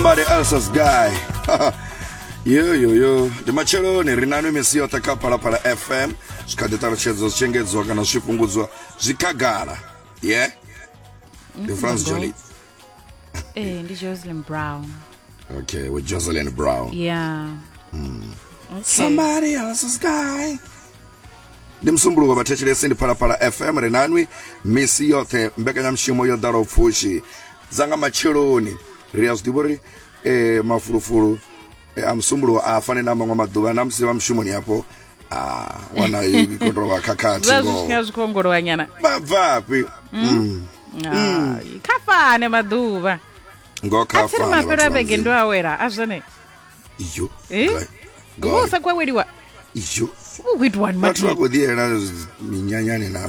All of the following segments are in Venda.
Somebody else's guy. yo yo yo ndi matsheloni ri nanu misi yoṱhe kha phalaphala fm zwi kha ḓi ṱalutshedzwa zwi tshengedzwa kana zwi fhungudzwa zwi khagala ye ndi france joli Eh, ndi Jocelyn Brown. okay with jocelyn brown Yeah. Okay. somebody else's guy ndi msumbuluko vhathetshelesi ndi phalaphala fm ri nanwi misi yoṱhe mbekanyamushumo yo ḓalaho pfushi dza nga matsheloni ri a zwi ḓivha uri um mafulufulu eh, a musumbulo a fane na maṅwe maḓuvha na musi vha mushumoni hafho ah, wana ikotovha khakhathi zwa zwi tshinya zwi khou ongolowanyana vha bvafhi Mm. Ah, kha fane maḓuvha ngo a tsiri khafana mafhelo a vhege ndo awela a zwone iyo Eh? gai- gai. iwe usa khou aweliwa iyo u khou itiwani vhathu vha mathina khou ḓiyela minyanyani na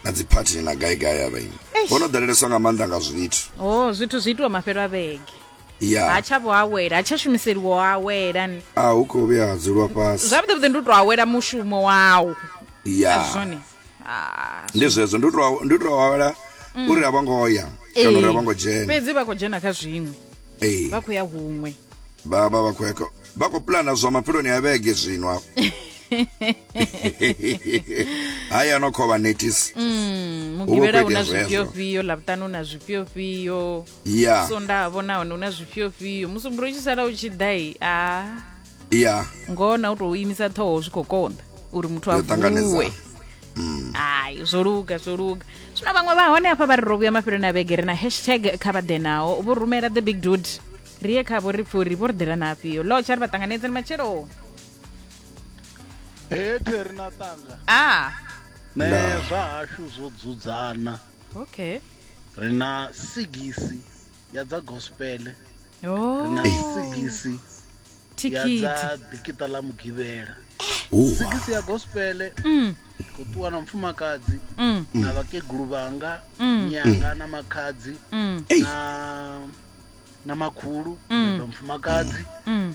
na dziphathini na gaigai avha ini Eish. vho no ḓaleleswa nga maanḓa nga zwithu o zwithu zwi itiwa mafhelo a vhege ha ya tsha vho awela ha tsha shumiseliwa u awela ni a hu khou vhuya ha dzulwa fhasi zwavhuḓi vhuḓi ndi u tou awela mushumo wawu ya zwone Ah, ndi zwezwo ndi to ndi to awela mm. uri a vho ngo ya kana uri a vho ngo dzhena fhedzi vha khou dzhena kha zwiṅwe ee vha khou ya huṅwe vha vha vha khou ya vha khou pulana zwa mapheloni a vhege zwino afho hayi ano khovha netis mm, mugivhela una zwifhiofhio lavhutani una zwifhiofhio ya sonda vhona hone una zwifhiofhio musumbulo tshi sala u tshi ḓai a ah. ya ngoho na u tou imisa ṱhoho zwi khou konḓa uri muthu a vuwe mm. hayi zwo luga zwo luga zwino vhaṅwe vha hone hafha vha ri ro vhuya mafheloni a vhege ri na hashtag kha vha ḓe naho vho rumela the big dude ri ye khavho ri pfhi uri vho ri ḓela na afhio lotsha ri vha ṱanganedzeni matshelo hete ri na ṱanga a ah. ne zwa hashu zwo dzudzana okay ri na sigisi ya dza gospel ri Oh, na sigisi ya thikhithi. dza dikita ḽa mugivhela sigisi ya gospel Mm, khou ṱuwa na mufumakadzi mm, na vhakegulu vhanga Mm. nyanga na makhadzi mm, na na makhulu Mm. na mufumakadzi mm.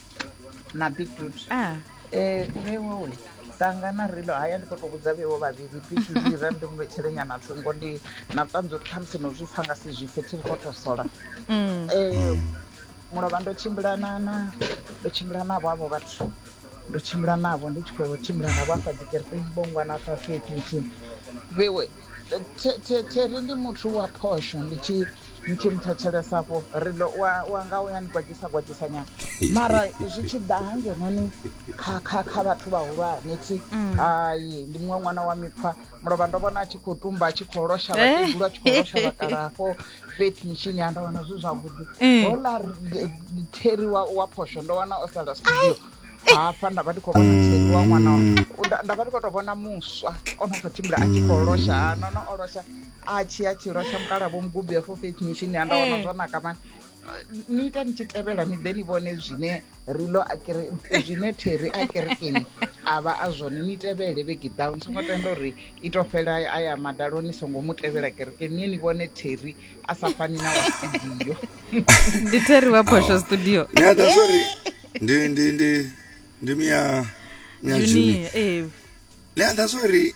na beetroot ah. eh, vhewo we tanga na rilo haya ndi khoto vhudza vhewo vhavhili bikira ndi mu vhetshele nyana thungo ndi na vhuṱanzi uri khamusi no zwi pfa nga si zwi pfe thiri khoto sola mm. eh, mulovha ndo tshimbila na na ndo tshimbila navho avho vhathu ndo tshimbila navho ndi tshi khou tshimbila navho afha dzikerekeni bongwana afha fhethu nthihi vhewe theri ndi muthu wa phosho ndi tshi ni tshi mthetshelesafho ri ḓo wa nga u ya ni gwadzisa gwadzisa nyana mara zwi tshi ḓa ha ngenoni kha kha kha vhathu vhahulwane thi mm. hai ndi muṅwe ṅwana wa mikhwa mulovha ndo vhona a tshi khou tumba a tshi khou losha eh. vhakegulu a tshi khou losha vhakalafho feti mishini ya ndo wana zwi zwavhuḓi eh. hola theri wa phosho ndo wana o sala studio hafha nda vha ndi khou vhona theri wa ṅwana nda vha ndi khou tou vhona muswa o no khou tshimbila a tshi khou losha ha nono o losha atshi atshi lwa sha mukala vho mugubi ya for faith mission ya nda wana eh. zwa naka mani ni ita ni tshi tevhela ni ḓe ni vhone zwine rilo zwine theri a kerekeni a vha a zwone ni tevhele vhege ḓaho ni songo tenda uri i to fhela a ya madalo ni songo mu tevhela kerekeni niye ni vhone theri a sa fani na wa studio ndi theri wa phosho studio yeah, that's sorry. ndi ndi ndi ndi mia mia juni eh. yeah, that's sorry.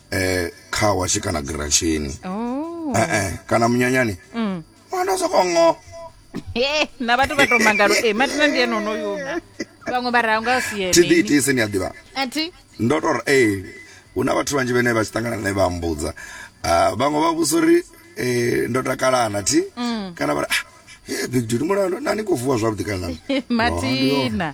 eh, kha washe kana girasheni oh. eh, eh, kana munyanyani mm. ndo soko ngo eh, na vhathu vha to mangalo e matina ndi ene onoyuna vhaṅwe vha ranga siene thi ḓiitise ni a ḓivha athi ndo to ri ee hu na vhathu vhanzhi vhene vha tshi ṱangana ne vha mbudza ah, vhaṅwe vha vhusa uri eh, ndo takalana thi mm. kana vha ri ah, big dude mulalo nani khou vuwa zwavhuḓi kana matina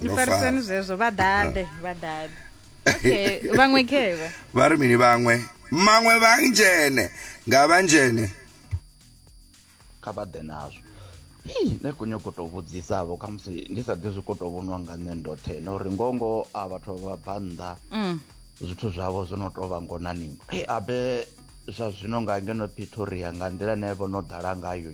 ni farisani zwezwo vha ḓaḓe vha ḓaḓe okay vhaṅwe khevha vha ri mini vhaṅwe maṅwe vha ndzhene nga vha ndzhene kha vha ḓe nazwo nṋe khou nyoko tou vhudzisavho kha musi ndi sa ḓi zwi khou tou vhoniwa nga nṋe ndoṱhe na uri ngongo a vhathu vha bva nnḓa mm. zwithu zwavho zwo no tou vha ngonaningwa e abe zwa zwino nga ngeno pitoria nga nḓila ne vho no ḓala ngayo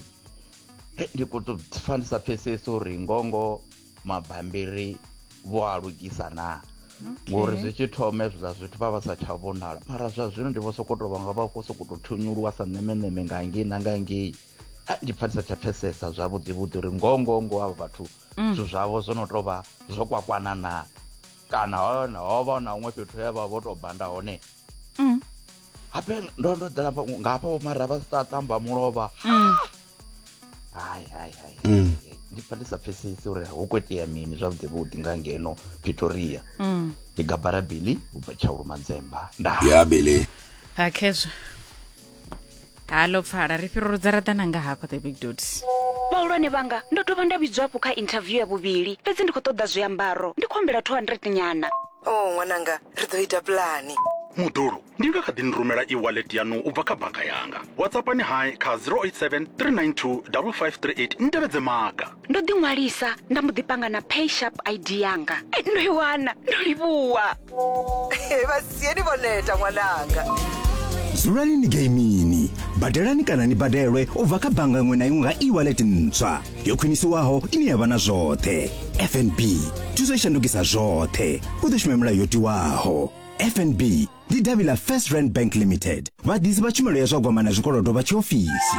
ndi khou tou pfa ndi sa pfhesesi uri ngongo mabambiri vho a lugisa naa ngori zwi tshi thoma ezwi zwa zwithu vha vha sa tsha vhonala mara zwa zwino ndi vho sokou tou vhanga vha khou sokou tou thunyuluwa sa ṋemeṋeme nga ngei na nga ngei ndi pfa ndi sa tsha pfesesa zwavhuḓi vhuḓi uri ngoho ngoho ngoho avho vhathu mm. zwithu zwavho zwo no tou vha zwo kwakwana naa kana hone ho vha na huṅwe fhethu he vha vho tou banda hone mm. habe ndo ndo ḓela hafha nga hafha vho mara vha sa tamba mulovha Mm. hai hai hai Mm. ndi pfa ndi sa pfesesi uri hu khou itea mini zwavhuḓi vhuḓi nga ngeno pretoria Mm. ndi gabara bili ubva tshaulu manzemba nda ya bele a khezwa halo pfala ri fhiruludza ra ḓana nga hafha the big dots vhahulwane vhanga ndo dovha nda vhidzwa hafhu kha interview ya vhuvhili fhedzi ndi khou ṱoḓa zwiambaro ndi khou humbela 200 nyana o oh, ṅwananga ri ḓo ita pulani muḓulu ndi nga kha ḓi ni rumela e-wallet yanu u bva kha banga yanga whatsappani hai kha 087 392 5538 ni tevhedze maga ndo ḓi ṅwalisa nda mbo ḓi panga na pay sharp id yanga Eh, ndo i wana ndo livhuwa vhasieni vho neta ṅwananga dzulani ni geimini badelani kana ni badelwe u bva kha bannga iṅwe na iṅwe nga e-wallet ntswa yo khwinisiwaho ine ya vha na zwoṱhe fnb thuso i shandukisa zwoṱhe u ḓo shuma milayo yo tiwaho fnb ndi davhi ḽa first rand bank limited vhaḓisi vha tshumelo ya zwa gwama na zwikolodo vha tshiofisi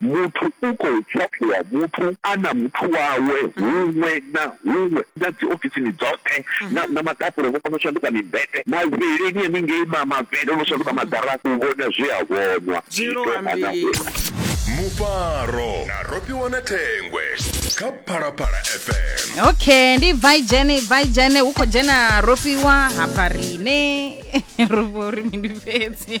Muthu u khou pfaphiwa muthu a na muthu wawe huṅwe na huṅwe, na dzi ofisini dzoṱhe, na, na maḓafula vho kona u shanduka mimbete, mavhilini haningei ma, mavhele o no shanduka maḓara, u vhona zwe a vhonwa, zwi tou hana hula. Mufaro na Rofhiwa na Thengwe kha Phalaphala FM. Okay, ndi bva i dzhene, bva i dzhene, hu khou dzhena Rofhiwa hafha riṋe ro vho ri mini fhedzi.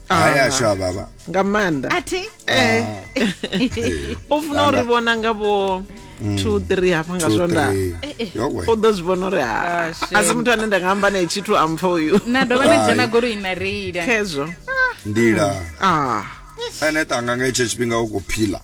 hai ashu a vhavha nga maanḓa athi eh u funa uri vhona nga vho 2 3 hafha nga swonda yowe u ḓo zwi vhona uri ha Ah, shame. a si muthu ane nda nga amba nae tshithu a mpfa uyu na dovha na dzhena goloi na reila khezwo nḓila ah ene tanga nga itsho tshifhinga u khou phila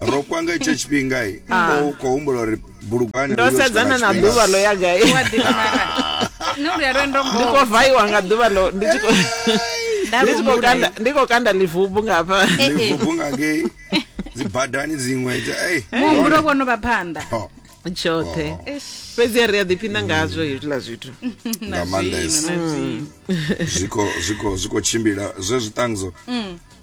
ro kwanga itsho tshifhinga i ah. u khou humbula uri bulugwane ndo sedzana na ḓuvha ḽo ya gai ndi khou vaiwa nga ḓuvha ḽo ndi tshi khou ndi khou kanda livubu nga hafha eh, eh. livubu nga ngei dzi badani dziṅwe muhumbulo vho no vha phanḓa oh. tshoṱhe oh. fhedzi a ri a ḓiphina ngazwo hezwiḽa zwithu nga maanḓesa mm. zwiko zwiko zwiko tshimbila zwe zwiṱangzo mm.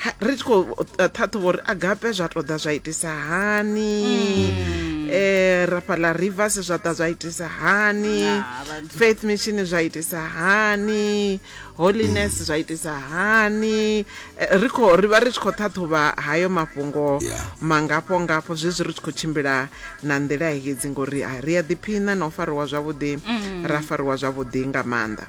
Ha, ri tshi khou eh, ṱhaṱhuvha uri agape zwa tou ḓa zwa itisa hani um rafhaḽa rivers zwa ḓa zwa itisa hani Ah, vhathu. faith mission zwa itisa hani holiness zwa itisa hani Eh, ri khou ri vha ri tshi khou ṱhaṱhuvha hayo mafhungo Yeah. mangafho ngafho zwezwi ri tshi khou tshimbila na nḓila hedzi ngori ah, ri a ḓiphina na u fariwa zwavhuḓi ra fariwa zwavhuḓi nga maanḓa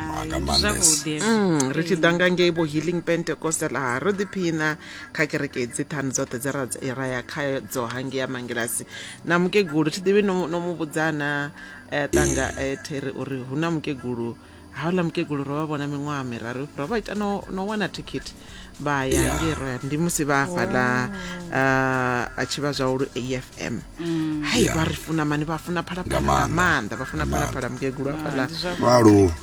nga maanḓesa mm, ri tshi ḓa nga ngei vho healing pentecostal ha ro ḓiphina kha kereke dzi ṱhanu dzoṱhe dza ra ya kha dzo hangi ya mangilasi na mukegulu thi ḓivhi no mu vhudzana eh, ṱanga eh, there uri hu na mukegulu hauḽa mukegulu ro vha vhona miṅwaha miraru ro vha ita no wana thikhithi vha ya yeah. ngei royal ndi musi vha afhaḽa uh, a tshi vha zwahulu afm mm. hai yeah. vha ri funa mani vha funa phalaphala nga maanḓa vha funa phalaphala mukegulu afhaḽa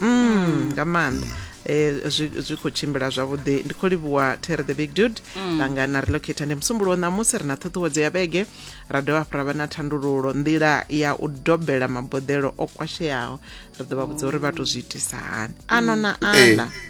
mm, nga maanḓa mm. Eh, zwi khou tshimbila zwavhuḓi ndi khou livhuwa terre the big dude mm. langa na relocata ndi musumbulowo ṋamusi ri na ṱhuṱhuwedzo ya vhege ra dovha hafhu ra vha na thandululo nḓila ya u dobela maboḓelo o kwasheaho ri ḓo vha vhudza uri vha to zwi itisa hani ano na mm. ana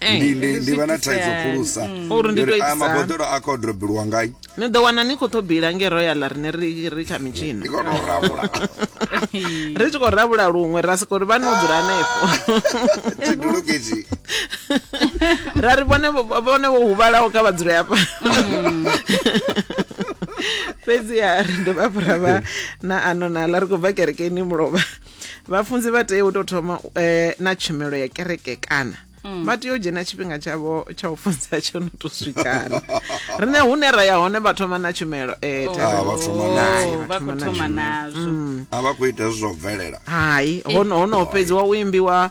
Eh, ndi ndi ndi vha na zwi thaidzo itisani. khulusa Mm. Uri ndi Ndi uri, to "Ah, itisa hani?" maboḓelo a khou drobiliwa ngai ni ḓo wana ni khou tou bila nge royal rine ri ri kha mitshini ndi khou tou rabula ri tshi khou rabula luṅwe ra soko ri vha no dzula hanefho tshidulukitshi ra ri vhone vho- vhone vho huvhalaho kha vha dzule hafha fhedziha ri dovha hafhu ra vha na ano nala ri khou bva kerekeni mulovha vhafunzi vha tea u tou thoma eh, na tshumelo ya kereke kana mm. vha tea u dzhena tshifhinga tshavho tsha u funza tsho no to swikana rine hune ra ya hone vha thoma na tshumelo eh, Oh. Ah, vha thoma Oh, nayo. vha khou thoma nazwo a vha khou ita zwi zwa u bvelela hai hono hono fhedziwa u imbiwa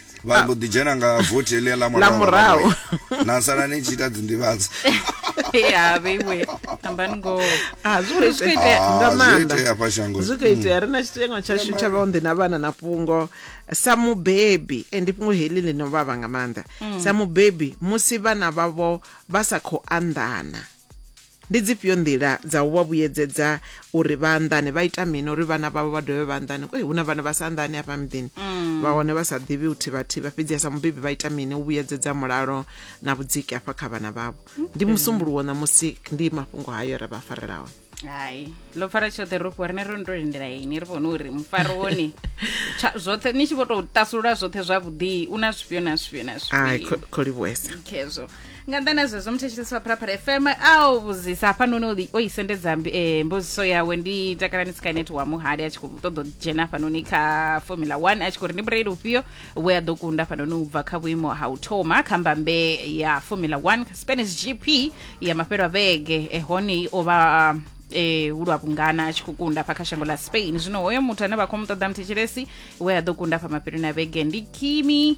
vha ah. mbo ḓi dzhena nga vothi heḽia ḽa murahu na sala ni tshi ita dzinḓivhadzo ya vheiwe ambani ngo a ah, zwi khou itea ah, nga maanḓa zwi khou itea hmm. ri na tshiteṅwa tshashu tsha vhaonḓi na vhana na fhungo sa mubebi and fhungo heḽi ḽi no vhavha nga maanḓa hmm. sa mubebi musi vhana vhavho vha sa khou anḓana Ndi dzifhio nḓila dza u vha vhuyedzedza uri vha anḓane? Vha ita mini uri vhana vhavho vha dovhe vha anḓane? Ee, hu na vhana vha sa anḓani hafha miḓini, vha hone vha sa ḓivhi u thivha-thivha. Fhedziha sa mubebi vha ita mini u vhuyedzedza mulalo na vhudziki hafha kha vhana vhavho? Ndi Musumbuluwo ṋamusi, ndi mafhungo hayo ra vha farela one. hai ḽo pfara tshoṱhe ro fhiwa rine ro no to lindela ini ri vhone uri mufaro wone tsha- zwoṱhe ni tshi vho tou tasulula zwoṱhe zwavhuḓi u na zwifhio na zwifhio na Ai, zwifhio kho- kho livhuwesa. khezwo nga nnḓa na zwezwo muthetshelesi wa phalaphala fm a o vhudzisa hafhanoni o ḽi- o i sendedza mbi- eh, mbudziso yawe ndi takalani skynet wa muhali a tshi khou ṱoḓa u dzhena hafhanoni kha formula 1 a tshi khou ri ndi mureili ufhio we a ḓo kunda hafhanoni u bva kha vhuimo ha u thoma kha mbambe ya formula 1 kha spanish gp ya mafhelo a vhege eh, hone o vha eh, hu lwa vhungana a tshi khou kunda hafha kha shango ḽa spain zwino hoyo muthu ane vha khou mu ṱoḓa muthetshelesi we a ḓo kunda hafha mafheloni a vhege ndi kimi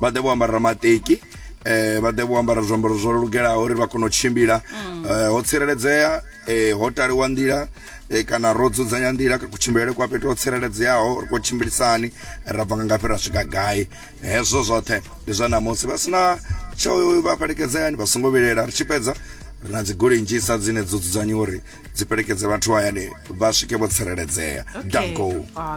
vha ḓe vho ambara maṱeki eh vha ḓe vho ambara zwiambaro zwo lugelaho uri vha kone u tshimbila mm. eh, ho tsireledzea eh, ho taliwa nḓila eh, kana ro dzudzanya nḓila ka kutshimbilele kwa fhethu ho tsireledzeaho ri khou tshimbilisani ra bva nga ngafhi ra swika gai hezwo zwoṱhe ndi zwa namusi vha sina tsho vha fhelekedzeani vha songo vhilela ri tshi fhedza ri na dzigoloi nnzhisa dzine dzo dzudzanyiwa uri dzi fhelekedze vhathu hayani vha swike vho tsireledzea okay. danko ah,